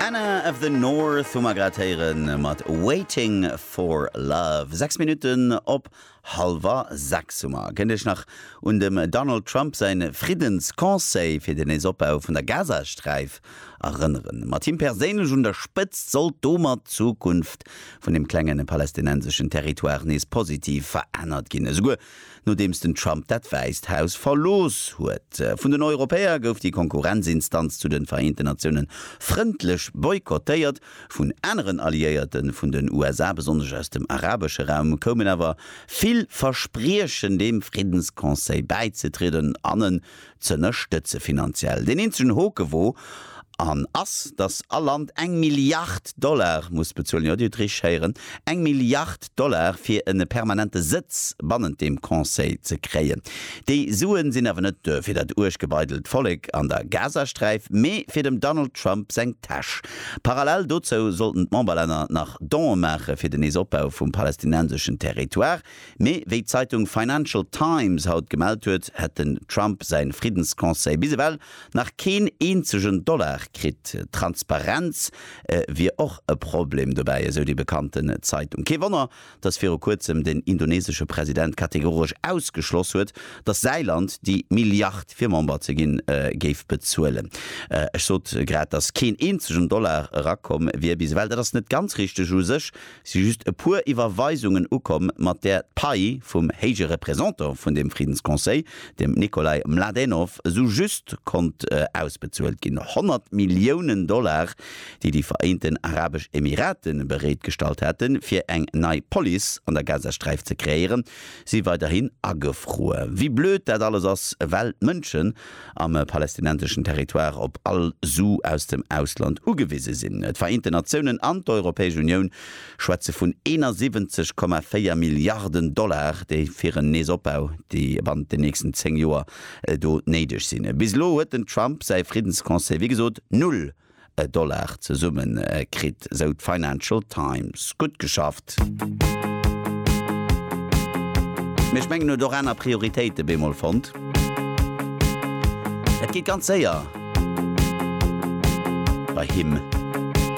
Anna of the North hu mer grad héieren mat Waiting for Love. 6 Minutten op halwer 6 hu mer. Kënnt Iech nach un dem Donald Trump säin Friddensconseil fir den Neesopbau vun der Gazasträif erënneren? Mat him perséinlech un der Spëtzt sollt domat d'Zukunft vun dem klenge palestinenseschen Territoire nees positiv verännert ginn. Esouguer Nodeems den Trump dat Wäisst Haus verlooss huet. Vun den Europäer gouf déi Konkurrenzinstanz zu den Vereenten Natiounen frëndlech boykottéiert. Vun aneren Alliéierten vun den USA, besonnesch aus dem arabesche Raum, koumen awer vill Verspriechen deem Friddensconseil bäizetrieden an en z'ënnerstëtze finanziell. Deen eenzegen Hoke wor an ass, dass all Land eng Milliard Dollar muss bezuelen, jo, Dir hutt richteg héieren, eng Milliard Dollar, fir en permanente Sëtz bannent deem Conseil ze kréien. Déi Suen sinn awer net do fir dat uerg gebeidelt Vollek an der Gazasträif, mä fir dem Donald Trump seng Täsch. Parallel dozou sollten d'Memberlänner nach Donë maache fir den nees Opbau vum palästinenseschen Territoire. Mee wéi d'Zeitung Financial Times haut gemellt huet, hätt den Trump säin Friddensconseil bis ewell nach keen eenzegen Dollar kritt. Transparenz wier och e Problem dobäi, esou déi bekannten Zeitung. Kee Wonner, datt viru kuerzem den indonesesche President kategoresch ausgeschloss huet, datt säi Land déi Milliard fir Member ze ginn, géif bezuelen. Ech sot grad, datt keen eenzegen Dollar erakomm wier bis ewell. Dat ass net ganz richteg u sech. si just e puer Iwwerweisungen ukomm, mat där d'Pai vum Héije Représentant vun deem Friddensconseil, dem Nikolai Mladenov, esou just konnt ausbezuelt ginn. 100 Milliounen Dollar, déi déi Vereenten Arabesch Emirate bereetgestallt haten, fir eng nei Police an der Gazasträif ze kreéieren, si weiderhin agefruer. Wéi blöd dat alles ass, well d'Mënschen, am palästinenseschen Territoire op all Su aus dem Ausland ugewise sinn. D'Vereenten Natiounen an d'Europäesch Unioun schwätze vun 71,4 Milliarden Dollar, déi fir en Neesopbau bannent den nächsten 10 Joer do néideg sinn. Bis elo huet den Trump säi Friddensconseil wéi gesot null e Dollar zesumme kritt, sou d'Financial Times. Gutt geschafft! Mee ech mengen en huet och aner Prioritéite bemol fonnt. Et geet ganz séier bei him.